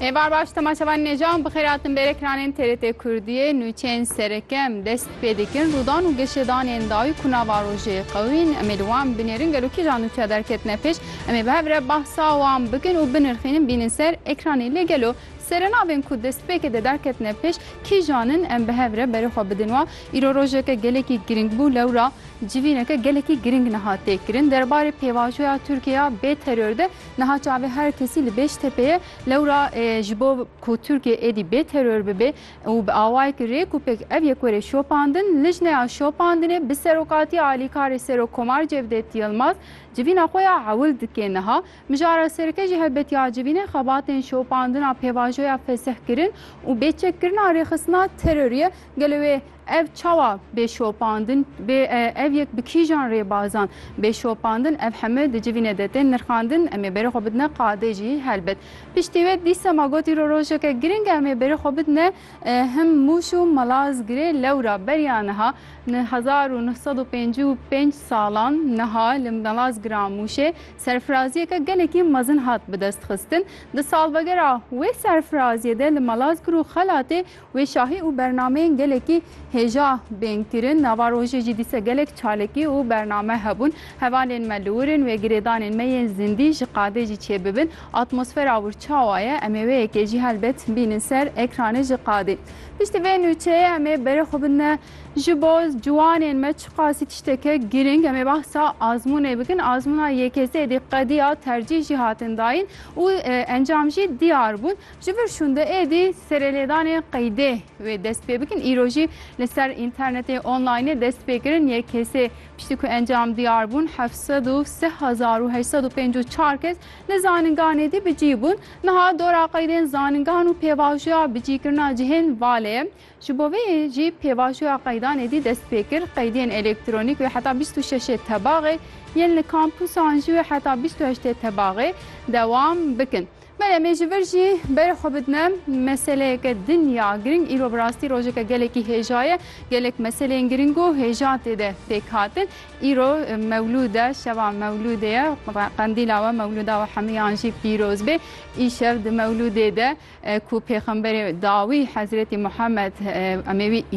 Êvar baş temaşevan nêjan bi xêratin bêrê kiranên TRT Kurdiyê nûçeyên serekem dest pê dikin rûdan û gişêdanên dawî ku nava rojê qewîn em ê li wan binêrin gelo kîjan nûçeya derketine pêş em ê bi hev re behsa wan bikin û binirxînin bînin ser ekranê lê gelo serenavên ku destpêkê de derketine pêş kîjan in em bi hev re berê xwe bidin wan îro rojeke gelekî girîng bû lewra civîneke gelekî girîng niha têkirin derbarê pêvajoya Tirkiye ya bê teror de Niha çavê her kesî li Bêştepê ye. Lewra ji bo ku Tirkiye êdî bê teror bibe û bi awayekî rêk û pêk ev yek were şopandin, lijneya şopandinê bi serokatiya alîkarê Serokkomar Cevdet Yilmaz civîna xwe ya ewil dike. Niha Mijara Sereke jî helbet ya civînê xebatên şopandina pêvajoya fesih kirin û bê çekkirina rêxistina terorî ye. Gelo wê Ev çawa bê şopandin bê ev yek bi kîjan rêbazan bê şopandin ev heme di civîne de tên nirxandin em ê berê xwe bidine qadê jî helbet piştî wê dîsa ma got îro rojeke giring e em ê berê xwe bidine him mûş û malazgirê lewra beriya niha ni hezar û neh sed û pêncî û pênc salan niha li malazgira mûşê serfiraziyeke gelekî mezin hat bidestxistin di salvegera wê serfiraziyê de li malazgir û xelatê Wê şahî û bernameyên gelekî hêja bên kirin. Nava rojê jî dîse gelek çalakî û bername hebûn. Hevalên me li wir in, wê girêdanên me yên zindî ji qadê jî çêbibin. Atmosfera wir çawa ye? Em ê wê yekê jî helbet bînin ser ekranê ji qadê. Piştî vê nûçeyê em ê berê xwe bidine ji bo ciwanên me çiqasî tişteke girîng. Em ê behsa azmûnê bikin. Azmûna yekesê êdî qedîya tercîh jî hatin dayîn û encam jî diyar bûn. Ji vir şûnde êdî serêlêdanê qeydê wê dest pê bikin. Îro jî li ser înternetê onlaynê dest pê kirin yek kesê piştî ku encam diyar bûn heft sed û sih hezar û heşt sed û pênc û çar kes li zaningan êdî bicî bûn. Niha dora qeydên zaningan û pêvajoya bicîkirina cihên valê ye. Ji bo vê yê jî pêvajoya qeydan êdî dest pê kir. Qeydên elektronîk wê heta bîst û şeşê tebaxê yên li kampusan jî wê heta bîst û heştê tebaxê dewam bikin. Belê me ji vir jî berê xwe bidime meseleyeke din ya giring. Îro bi rastî rojeke gelekî hêja ye. Gelek meseleyên giring û hêja tê de pêk hatin. Îro mewlûd e, şeva mewlûdê ye. Qendîla we, mewlûda we hemûyan jî pîroz bê. Îşev di mewlûdê de ku pêxemberê dawî Hezretî Muhammed em ê wî